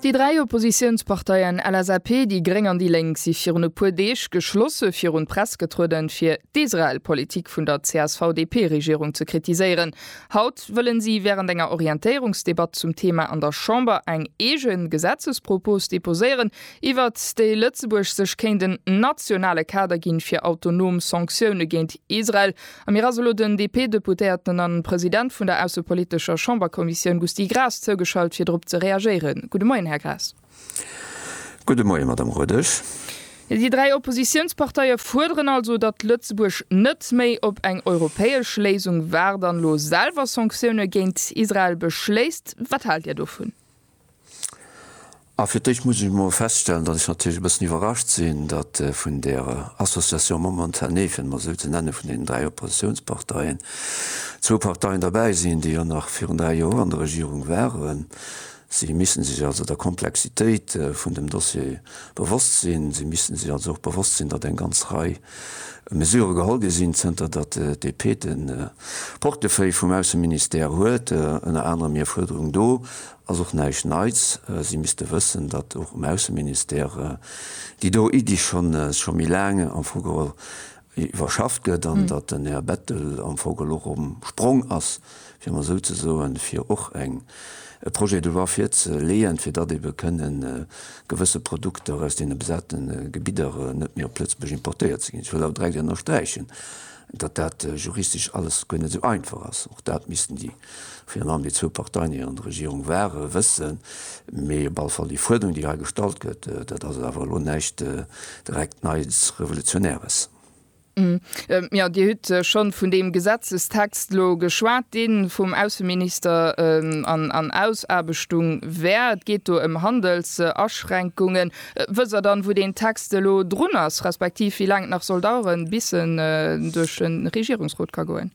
Déi dräi Oppositiounsparteien LSAP, déi gréng an déi lénk si virun e puer Deeg geschlosse virun d'Press getrueden, fir d'Israel-Politik vun der CSV-DP-Regierung ze kritiséieren. Haut wëllen si wärend enger Orientéierungsdebatt zum Thema an der Chamber eng eegen Gesetzespropos deposéieren, iwwert déi Lëtzebuerg sech kéint en nationale Kader ginn, fir autonom Sanktioune géint Israel A mir ass elo den DP-Deputéierten an President vun der aussepolitescher Chamberkommissioun Gusty Graas zougeschalt fir drop ze reagéieren. Gudde Moien, Här Graas. Gudde Moien, Madame Rodesch. Déi dräi Oppositiounsparteie fuerderen also, datt Lëtzebuerg net méi op eng europäesch Léisung waart an elo selwer Sanktioune géint Israel beschléisst. Wat haalt Dir dovun? A fir d'éischt muss ech emol feststellen, datt ech natierlech e bëssen iwwerrascht sinn, datt vun der Association Momentanée, fir et emol esou ze nennen, vun deenen dräi Oppositionsparteien, zwou Parteien derbäi sinn, déi jo nach virun dräi Joer an der Regierung waren. Si misste sech also der Komplexitéit vun dem Dossier bewosst sinn. Si misste sech also och bewosst sinn, datt eng ganz Rei Mesurë geholl gi sinn, zënter datt d'DP de Portefeuille vum Ausseministère huet. Ënner anerem hir Fuerderung do ass och näischt Neits. Si misste wëssen, datt och um Ausseministère déi do Iddi scho méi laang am Fong geholl iwwerschafft gëtt an datt den Här Bettel am Fong elo erëm um Sprong ass, fir emol esou ze soen, fir och eng e Projet de loi virzeleeën, fir datt ebe kënne gewësse Produkter aus deene besate Gebidder net méi op Lëtzebuerg importéiert ze ginn. Ech wëll awer direkt ënnersträichen, datt dat juristesch alles guer net esou einfach ass. Och dat missten déi, virun allem déi zwou Parteien, déi an der Regierung ware, wëssen. Mee op alle Fall déi Fuerderung, déi hei gestallt gëtt, dat ass awer elo näischt direkt Neies, Revolutionäres. Jo, Dir hutt schonn vun deem Gesetzestext elo geschwat, dee vum Ausseminister an Ausaarbechtung wär. Et geet do ëm Handelsaschränkungen. Wësst Der dann, wou deen Text elo drun ass, respektiv wéi laang et nach soll daueren, bis en duerch de Regierungsrot ka goen?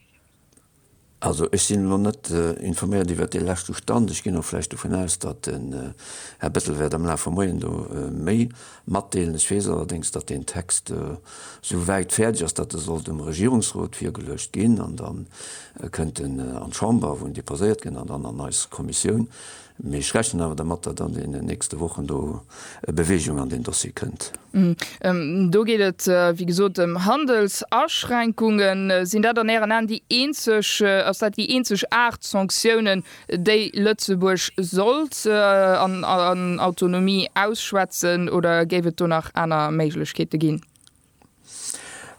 Also ech sinn elo net informéiert iwwert dee leschte Stand. Ech ginn och vläicht dovun aus, datt den Här Bettel wäert am Laf vum Moien do méi matdeelen. Ech weess allerdéngs, datt deen Text esou wäit fäerdeg ass, datt e soll dem Regierungsrot virgeluecht ginn an da kënnt en an d'Chamber, wou en deposéiert gëtt an dann an eis Kommissioun. Mee ech rechnen awer dermat, datt an deenen nächste Wochen do Bewegung an deen Dossier kënnt. Do geet et wéi gesot ëm Handelsaschränkungen. Sinn dat an Ären Aen déi eenzeg, ass dat déi eenzeg Aart Sanktiounen, déi Lëtzebuerg sollt an Autonomie ausschwätzen, oder géif et do nach aner Méiglechkeete ginn?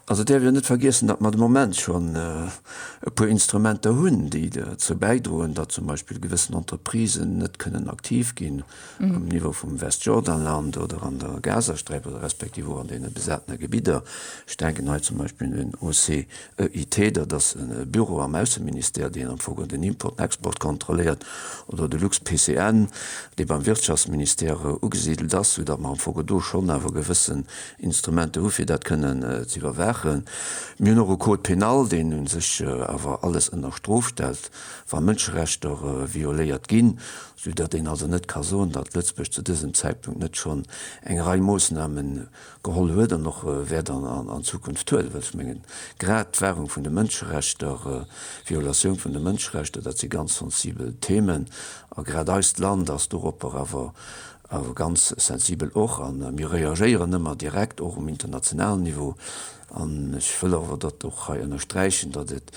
Also et däerf een net vergiessen, datt mer de Moment schonn e puer Instrumenter hunn, déi derzou bäidroen, datt zum Beispill gewëssen Entreprisen net kënnen aktiv ginn um Niveau vum Westjordanland oder an der Gazasträif oder respektiv och an deene besatene Gebidder. Ech denken hei zum Beispill un den OCEIT, dat ass e Büro am Ausseministère, deen am Fong geholl den Import an Export kontrolléiert, oder de LuxPCN, dee beim Wirtschaftsministère ugesidelt ass, soudatt mer am Fong geholl do schonn awer gewësse Instrumenter hu fir dat kënnen ze iwwerwaachen. Mir hunn och e Code pénal, deen u sech awer alles ënner Strof stellt, wa Mënscherechter violéiert ginn, sou datt een also net ka soen, datt Lëtzebuerg zu dësem Zäitpunkt net schonn eng Rei Moossname geholl huet an och wäert an Zukunft huelen. Well ech mengen, grad d'Wahrung vun de Mënscherechter, d'Violatioun vun de Mënscherechter, dat si ganz sensibel Themen a grad eist Land ass doropper awer awer ganz sensibel och, a mir reagéieren ëmmer direkt och um internationalen Niveau, an ech wëll awer dat och hei ënnersträichen, datt et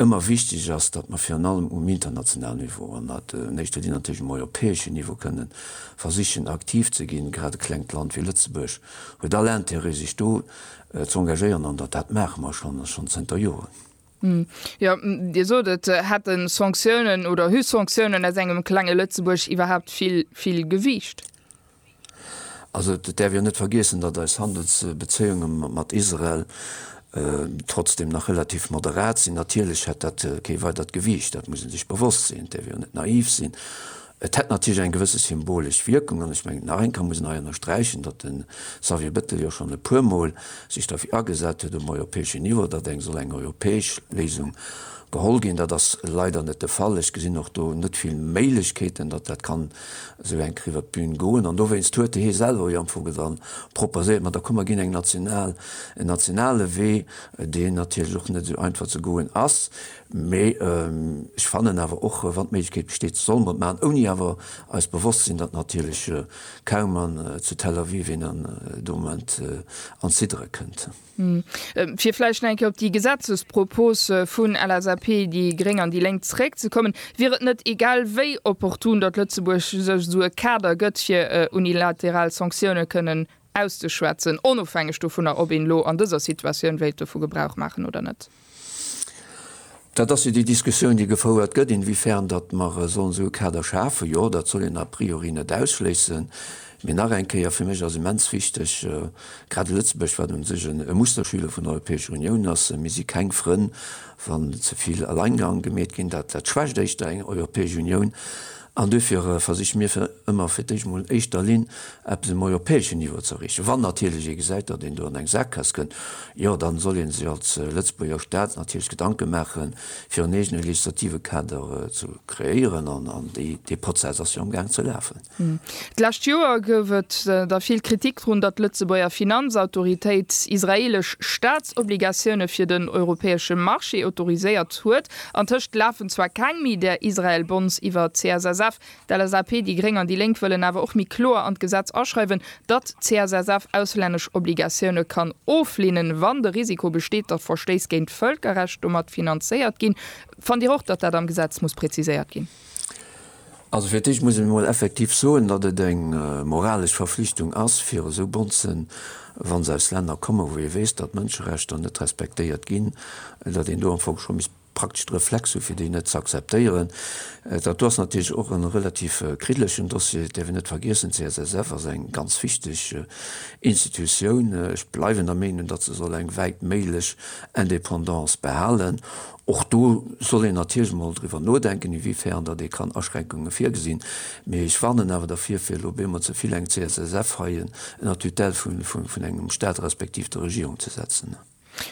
ëmmer wichteg ass, datt mer virun allem um internationalen Niveau, an dat an éischter Linn natierlech um europäeschen Niveau, kënne versichen aktiv ze ginn. Grad e klengt Land wéi Lëtzebuerg huet all Intérêt sech do z'engagéieren, an dat maache mer schonn, a schonn zënter Joren. Jo, Dir sot et, hätten Sanktiounen oder hu Sanktiounen aus engem klenge Lëtzebuerg iwwerhaapt vill, vill Gewiicht? Also et däerf jo net vergiessen, datt eis Handelsbezéiunge mat Israel trotzdeem nach relativ moderat sinn. Natierlech hätt dat kee weidert Gewiicht, dat muss ee sech bewosst sinn. Et däerf jo net naiv sinn, Et hätt natierlech eng gewësse symbolesch Wierkung an ech mengen, nach eng Kéier muss een hei ënnersträichen, datt de Xavier Bettel jo schonn e puermol sech derfir agesat huet um europäeschen Niveau, datt eng soll eng europäesch Léisung geholl ginn. Dat ass leider net de Fall. Ech gesinn och do net vill Méiglechkeeten, datt dat kann esou enk riwwer d'Bün goen an dowéinst huet hee selwer jo am Fong dann proposéiert, ma da komm mer ginn eng national, en nationale Wee, deen natierlech och net esou einfach ze goen ass. Mee ech fannen awer och, wann d'Méiglechkeet besteet, solle mer et maachen, ouni awer eis bewosst sinn, datt natierlech kaum en zu Tel Aviv een an de Moment an d'Ziddere kënnt. Fir vläicht nach eng Kéier op déi Gesetzespropos vun LSAP, déi Gréng an déi Lénk zeréckzekommen, Wier et net egal wéi opportun, datt Lëtzebuerg sech esou e Kader gëtt, fir unilateral Sanktioune kënnen Auszeschwätzen, onofhängeg dovunner, ob een elo an dëser Situatioun wéilt dovu Gebrauch maachen oder net. Dat ass jo déi Diskussioun, déi gefouert gëtt, inwiefern datt mer sollen esou e Kader schafen. Jo, dat soll een a priori net ausschléissen. Mee nach eng Kéier, fir mech ass immens wichteg, grad Lëtzebuerg, wat u sech e Musterschüler vun der Europäescher Unioun ass, mir si keng Frënn, wann ze vill Alleingang gemeet ginn, dat schwächt éischter eng Europäesch Unioun, An duerfir versiche mir fir ëmmer fir d'éischt emol an éischter Linn eppes um europäeschen Niveau ze erreechen. Wann natierlech ee gesäit, datt een do an eng Saakgaass kënnt, jo, dann soll ee sech als Lëtzebuerger Staat natierlech Gedanke maache fir en eegene legislative Kader ze kreéieren. An dee Prozess ass jo am Gaang ze lafen. D'lescht Joer gouf et da vill Kritik drun, datt d'Lëtzebuerger Finanzautoritéit israeelesch Staatsobligatioune fir den europäesche Marché autoriséiert huet. Antëscht lafen zwar keng méi där Israel-Bonds iwwer. D'CSSF, d'LSAP, déi Gréng an déi Lénk wëllen awer och méi kloer an d'Gesetz aschreiwen, datt d'CSSF auslännesch Obligatioune kann oflehnen, wann de Risiko besteet, datt Verstéiss géint d'Vëlkerrecht domat finanzéiert ginn. Fannt Dir och, datt dat am Gesetz muss präziséiert ginn? Also fir d'éischt muss ech emol effektiv soen, datt et eng moralesch Verflichtung ass, fir esou Bonzen, wa se aus Länner kommen, wou ee weess, datt d'Mënscherechter net respektéiert ginn, datt een do am Fong scho misst praktesch de Reflex hu fir déi net z'akzeptéieren. Dat do ass natierlech och e relativ kriddelechen Dossier. Et däerf een net vergiessen, d'CSSF ass eng ganz wichteg Institutioun. Ech bleiwen der Meenung, datt se soll eng wäitméiglech Indépendance behalen. Och do soll een natierlech emol driwwer nodenken, iwwéifern datt ee kann Aschränkunge virgesinn. Mee ech warnen awer dervir, fir elo bemol ze vill eng CSSF hei ënner d'Tutelle vun engem Staat respektiv der Regierung ze setzen.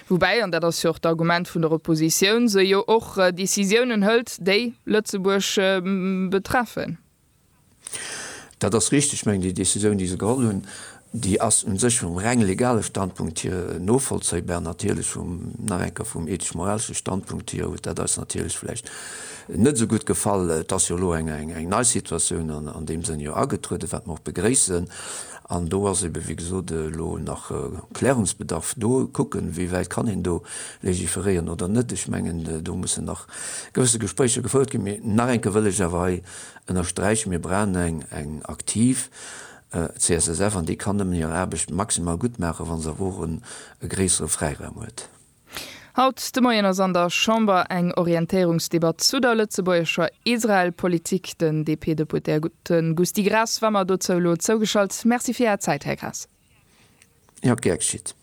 Woubäi, an dat ass jo och d'Argument vun der Oppositioun, se jo och Decisiounen hëlt, déi Lëtzebuerg betreffen. Dat ass richteg. Ech mengen, déi Décisioun, déi se geholl hunn, déi ass u sech vum reng legale Standpunkt hier novollzéibar. Natierlech vum, nach eng Kéier, vum ethesch-moralesche Standpunkt hier huet dat eis natierlech vläicht net esou gutt gefall. Et ass jo elo eng nei Situatioun an deem Sënn jo agetrueden, wat mer och begréissen. An do ass eebe wéi gesot elo nach Klärungsbedarf do, kucken, wéi wäit kann een do legiferéieren oder net. Ech mengen, do mussen nach gewësse Gespréicher gefouert ginn. Mee nach eng Kéier wëll ech awer hei ënnersträichen, Mir brauchen eng eng aktiv CSSF an déi kann nëmmen hir Aarbecht maximal gutt maachen, wa se awer och e gréissere Fräiraum huet. Haut de Moien ass an der Chamber eng Orientéierungsdebatt zu der lëtzebuergescher Israel-Politik. Den DP-Deputéierte Gusty Graas war mer dozou elo zougeschalt. Merci fir Är Zäit, Här Graas. Jo, gär geschitt.